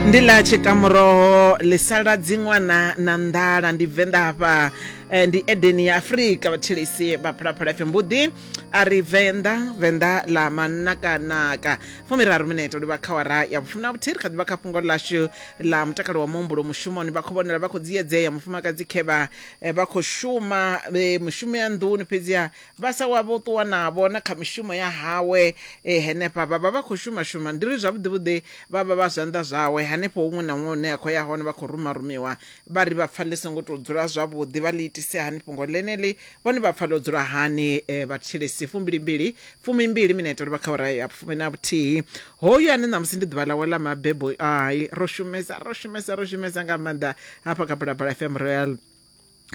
ndi ḽa tshikamuroho ḽi sala dziṅwana na nḓala ndi venḓa hafha eh, ndi edeni ya afurika vhathelesi vha phalaphala fm vhuḓi a ri venḓa venḓa ḽa manakanaka fumiraru minete ndi vha khawara ya vhufumi na vhuthihi ri kha ḓi vha kha fhungo ḽashu ḽa mutakalo wa muhumbulo mushumoni vha khou vhonala vha khou dziedzea mufumakadzi khevha eh, vha khou shuma eh, mushumo ya nḓuni fhedziha vha sa wa vho ṱuwa navho na kha mishumo ya hawe e, henefha vha vha vha khou shumashuma ndi ri zwavhuḓivhuḓi vha vha vha zwanḓa zwawe hanefho huṅwe na huṅwe hune a khou ya hone vha khou rumarumiwa vha ri vha pfa ḽi songo tou dzula zwavhuḓi vha ḽi itise hani fhungo ḽeneḽi vhone vha pfa ḽo dzula hani e, vhatshilisi fumbilimbili fumimbili minete uri vha kha ura ya fumi na vhuthihi hoyu ane ṋamusi ndi ḓuvha ḽawe ḽa mabebo ai ro shumesa ro shumesa ro shumesa nga maanḓa hafha kha bulabula fm royal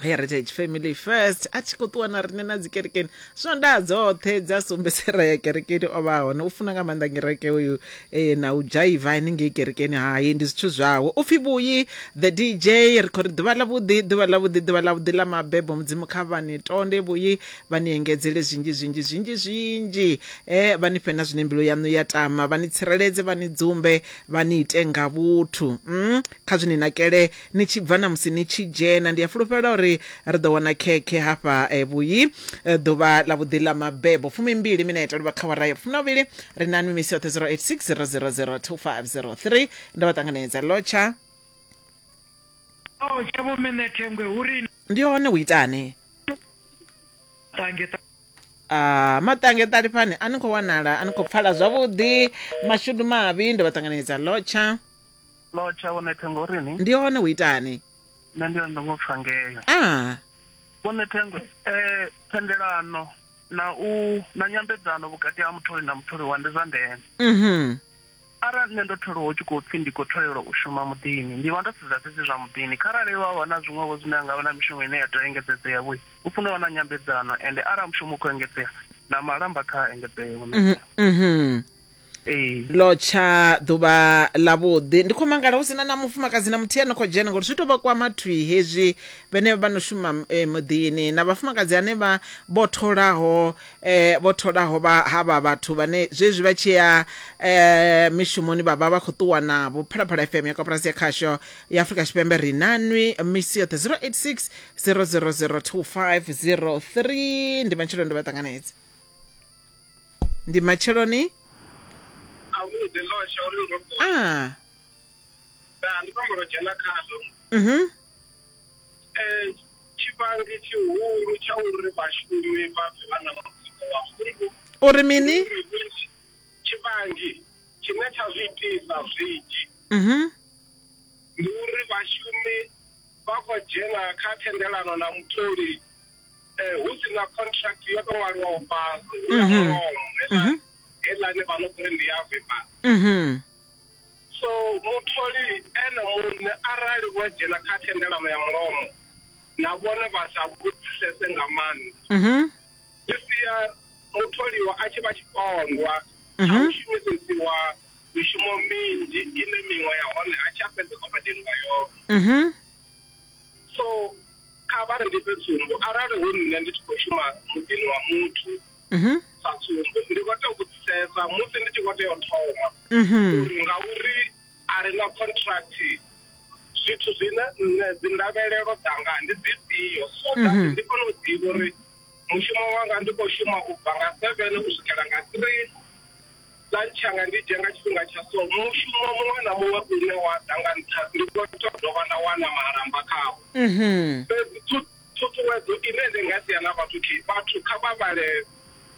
heritage family first a tshi khou ṱuwa na riṋe na dzikerekeni swondaha dzoṱhe dza sombesera ya kerekeni o vha hone u funa nga maanḓa ngereke uyu e, na u dzhaiva henengei kerekeni hai ndi zwithu zwawe u pfhi vhuyi the dj ri khou ri ḓuvha ḽavhuḓi ḓuvha ḽavhuḓi ḓuvha ḽavhuḓi ḽa mabebo mudzimu kha vhani tonde vhuyi vha ni engedzele zwinzhi zwinzhi zwinzhi zwinzhi e, vha ni fhe na zwine mbilu yaṋu ya tama vha ni tsireledze vha ni dzumbe vha ni ite nga vhuthu mm? kha zwi ni nakele ni tshi bva na musi ni tshi dzhena. Ndi a fulufhela uri ri ḓo wana khekhe hafha vhuyi ḓuvha ḽa vhuḓi ḽa mabebo. Fumimbili minete luvha kha awara ya vhufumi na vhuvhili. Ri na nwi misi yoṱhe 086 000 2503. Ndo vha ṱanganedza Lotsha. Ao tsha vho mene thengwe hu ri Ndi hone hu itani? tange ta Ah, maṱange ṱalifhani a ni khou wanala a ni khou pfala zwavhuḓi mashudu mavhi ndo vha ṱanganedza Lotsha. Lotsha wo nethe ngori ni. Ndi hone hu itani? Nṋe ndi hone ndo ngo pfa ngeyo. Ah. Vho Nethengwe, eh thendelano na u na nyambedzano vhukati ha mutholi na mutholiwa ndi zwa ndeme. Mhm. Arali nṋe ndo tholiwa hu tshi khou pfi ndi khou tholelwa u shuma muḓini, ndi vha ndo sedza fhedzi zwa muḓini. Kharali vha vha na zwiṅwevho zwine ha nga vha na mishumo ine ya tea u engedzedzea vho, hu funa u vha na nyambedzano ende arali mushumo u khou engedzea na malamba kha a engedzee, Vho Nethengwe. Mhm. ee lo tsha ḓuvha ḽavhuḓi ndi khou mangala hu sina na mufumakadzi na muthihi ano khou dzhena ngori zwi tou vha kwama thwi hezwi vhenevha vha no shuma eh, muḓini na vhafumakadzi ane vha vho tholaho eh, vho tholaho vha havha vhathu vhane zwezwi vha tshi ya eh, mishumoni vha vha vha khou ṱuwa navho phalaphala fm ya koporasi ya khasho ya afrika tshipembe ri nanwi misi yoṱhe 086 000 2503 ndi matshelo ndi vha ṱanganedzi ndi matsheloni avhuḓi ḽo tsha uri ndo ṱuwa ah nda ndi khou amba dzhena khazwo mhm Eh, tshivhangi tshihulu tsha uri vhashumi vha pfe vha na mutsiko wa hungu uri mini tshivhangi tshine tsha zwi itisa zwinzhi mhm ndi uri vhashumi vha khou dzhena kha thendelano na mutholi eh, hu si na contract yo to ṅwaliwaho fhasi hu na Mhm. mulomo Mhm. heiḽani vha no kuri ndi ya vipa Mhm. so mutholi ene muṋe arali vho dzhena kha thendelano ya mulomo na vhone vha sa vhudzisese nga maanḓa Mhm. zwi sia mutholiwa a tshi vha tshipondwa tsha Mhm. u shumisesiwa mishumo minzhi ine miṅwe ya hone a tshi a fhedza o badeliwa yone Mhm. so kha vha ndi fhe tsumbo arali hu nṋe ndi tshi khou shuma muḓini wa muthu mhm sa tsumbo ndi khou tea u vhudzisesa musi ndi tshi khou tea u thoma mhm uri ngauri a re na contract zwithu zwine nṋe dzi ndavhelelo dzanga ndi dzifhio so that Mhm. ndi kone u ḓivha uri mushumo wanga ndi khou shuma u bva nga seven u swikela nga three Lunch yanga ndi dzhia nga tshifhinga tsha so. Mushumo muṅwe na muṅwe une wa ḓa nga nṱha ndi khou to dovha nda wana malamba khawo. Mhm. Fhedzi thu- thuthuwedzo ine ndi nga sia na vhathu thi vhathu kha vha vhale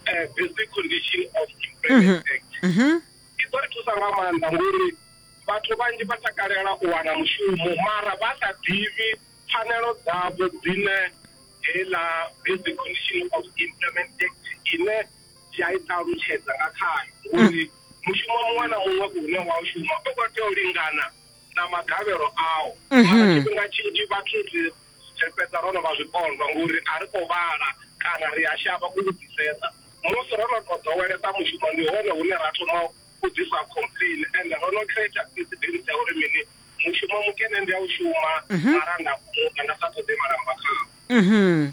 eh, basic condition of employment act. Mhm. i ḓo ri thusa nga maanḓa ngori vhathu vhanzhi vha takalela u wana mushumo mara vha sa ḓivhi pfanelo dzavho dzine heiḽa basic condition of employment act ine tshi a i ṱalutshedza nga khayo uri mushumo muṅwe na muṅwe une wa u shuma u khou tea u lingana na magavhelo awo mara tshifhinga tshinzhi vhathu ri ri fhedza ro no vha zwipondwa ngori a ri khou vhala kana ri a shavha u vhudzisesa musi ro no to ḓowelesa mushumo ndi hone hune ra thoma u ḓisa complain and ro no creator precedence ya uri mini mushumo mukene ndi a u shuma mara nda kumuka nda sa ṱoḓi malamba khawo Mhm.